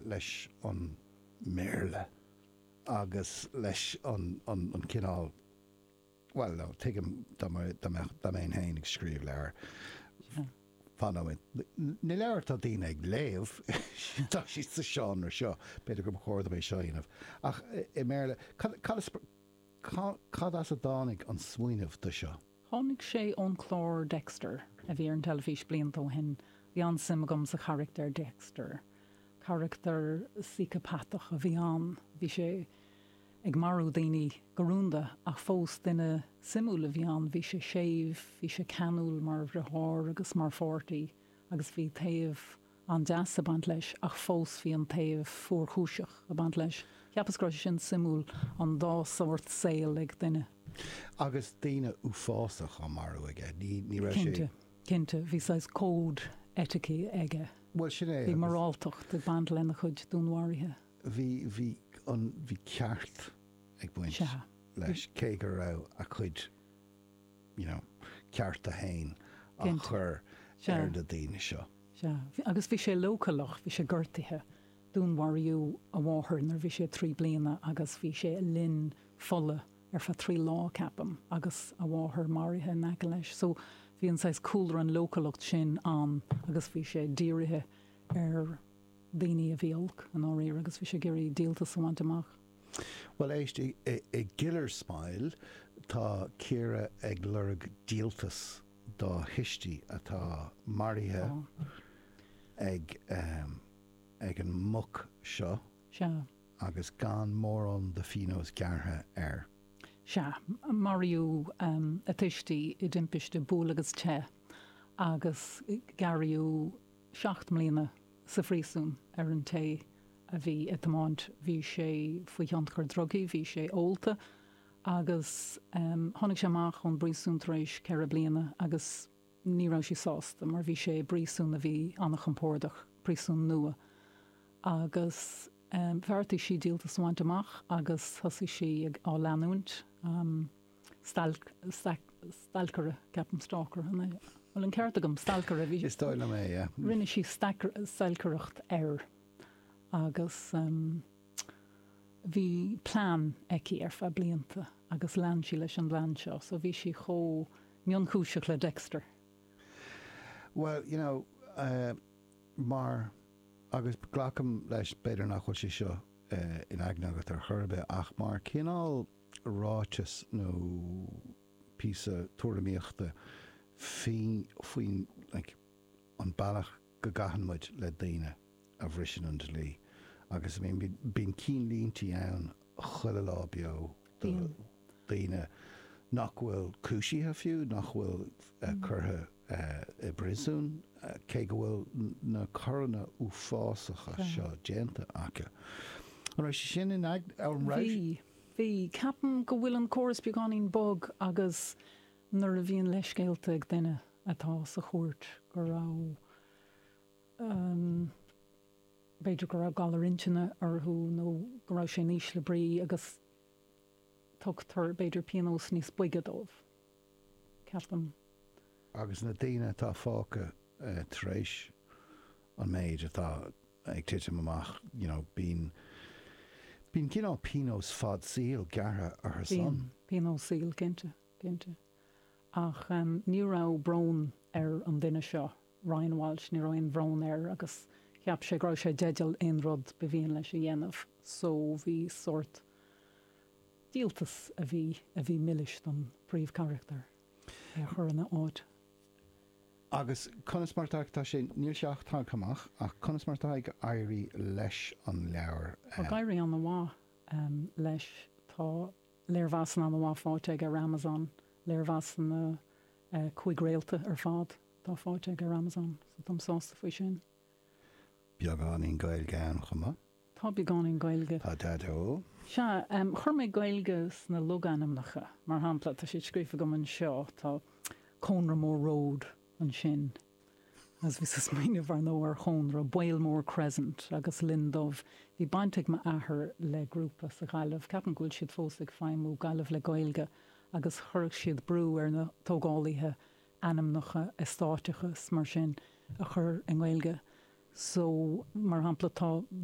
leis an mBéarla agus leis an cineál, bhuel no, tuigim dá mbeinn féin ag scríobh leabhar, fan nóiméad, na leabhair atá daoine ag léamh, tá siad sa seánra seo, b'fhéidir gur chóir dom é seo a dhéanamh, ach i mBéarla. Cad as a dtáinig an smaoineamh do seo? Tháinig sé ón clár Dexter a bhí ar an teilifís blianta ó shin. Bhí an-suim agam sa charachtar Dexter. Carachtar síceapatach a bhí ann. Bhí sé ag marú daoine go rúnda ach fós duine suimiúil a bhí ann. Bhí sé séimh, bhí sé ceanúil mar dheartháir agus mar pháirtí agus bhí taobh. an-deas ag baint leis ach fós bhí an taobh fuarchúiseach ag baint leis. Ceapaim go raibh sé sin suimiúil, an dá shórt saoil ag duine. Agus daoine uafásach á marú aige, ní raibh sé. Cinnte, cinnte, bhí saghas cód eitici aige. Bhuel, sin é agus. Bhí moráltacht ag baint lena chuid dúnmharaithe. Bhí, bhí an, bhí ceart ag baint leis cé go raibh a chuid. you know, cearta féin á chur ar na daoine seo. Sea. Agus bhí sé leochaileach, bhí sé gortaithe. Dúnmharaíodh a mháthair nuair a bhí sé trí bliana agus bhí sé i linn fola ar feadh trí lá, ceapaim, agus a mháthair maraithe in aice leis. So, bhí an saghas cúlra, an leochaileacht sin ann agus bhí sé dírithe ar daoine a bhí olc i ndáiríre agus bhí sé ag iarraidh díoltas a bhaint amach. Bhuel éist, i gKiller Smile, tá Ciara ag lorg díoltas dá thuistí atá maraithe ag ag an mboc seo Sea. agus gan mórán de phíonós gearrtha air. Sea. Maraíodh a tuistí i dtimpiste buail-agus-teith agus gearraíodh seacht mbliana sa phríosún ar an té a bhí ag tiomáint. Bhí sé faoi thionchar drugaí, bhí sé ólta agus tháinig sé amach ón bpríosún tar éis ceithre bliana agus ní raibh sí sásta mar bhí sé i bpríosún a bhí an-chompordach, príosún nua. Agus bheartaigh sí díoltas a bhaint amach agus thosaigh sí ag, á leanúint. stalc, stack, stalcaire, ceapaim stalker an é? an bhfuil an ceart agam? stalcaire bhí Is dóigh liom é, yeah. rinne sí stack, stalcaireacht air agus um, bhí plean aici ar feadh blianta agus lean sí leis an bplean seo so bhí sí chomh mionchúiseach le Dexter. Well, you know, uh, mar agus glacaim leis b'fhéidir nach bhfuil sé seo uh, in aigne agat ar chor ar bith ach mar cineál ráiteas nó píosa tuairimíochta faoin like an bealach go gcaitheann muid le daoine a bhriseann an dlí agus I mean bíonn cinnlíntí ann chuile lá beo do dhaoine nach bhfuil cúisithe fiú, nach bhfuil curtha i bpríosún cé go bhfuil na coireanna uafásacha seo déanta acu. An raibh sé sin in aigne agat, an raibh? Bhí. Bhí, ceapaim go bhfuil an córas beagáinín bog agus nuair a bhíonn leithscéalta ag duine atá sa chúirt go raibh, ahem, b'fhéidir go raibh galar intinne orthu nó go raibh sé in ísle brí agus tugtar b'fhéidir pionós níos boige dóibh. ceapaim. Agus na daoine atá fágtha tar éis an méid atá ag titim amach, you know, bíonn cineál pionós fad saoil gearrtha orthu san. Bíonn, pionós saoil, cinnte, cinnte. Ach ní raibh brón ar an duine seo, Ryan Walsh, ní raibh aon bhrón air agus cheap sé go raibh sé i dteideal aon rud ba mhian leis a dhéanamh. So bhí sórt. díoltas a bhí a bhí milis don bpríomhcharachtar é a chur ina áit. Agus conas mar atá ag tá sé níl sé ach tagtha amach ach conas mar atá ag éirí leis an leabhar? Tá ag éirí an-mhaith leis. Tá léirmheasanna an-mhaith faighte aige ar Amazon. Léirmheasanna cúig réalta ar fad atá faighte aige ar Amazon so táim sásta faoi sin. Beagáinín Gaeilge ann chomh maith. Tá beagáinín Gaeilge. Sea, chuir mé Gaeilge sna logainmneacha. Mar shampla, tá siad scríofa agam anseo, tá Cónra Mór Road ansin, agus bhíos ag smaoineamh, ar ndóigh, ar chónra, Baol Mór Crescent, agus Linn Dubh. Bhí baint ag m'athair le grúpa sa Ghaillimh, ceapaim go bhfuil siad fós ag feidhmiú, Gaillimh le Gaeilge, agus chuirfeadh siad brú ar na tógálaithe ainmneacha eastáit agus mar sin a chur i nGaeilge. So, mar shampla, tá.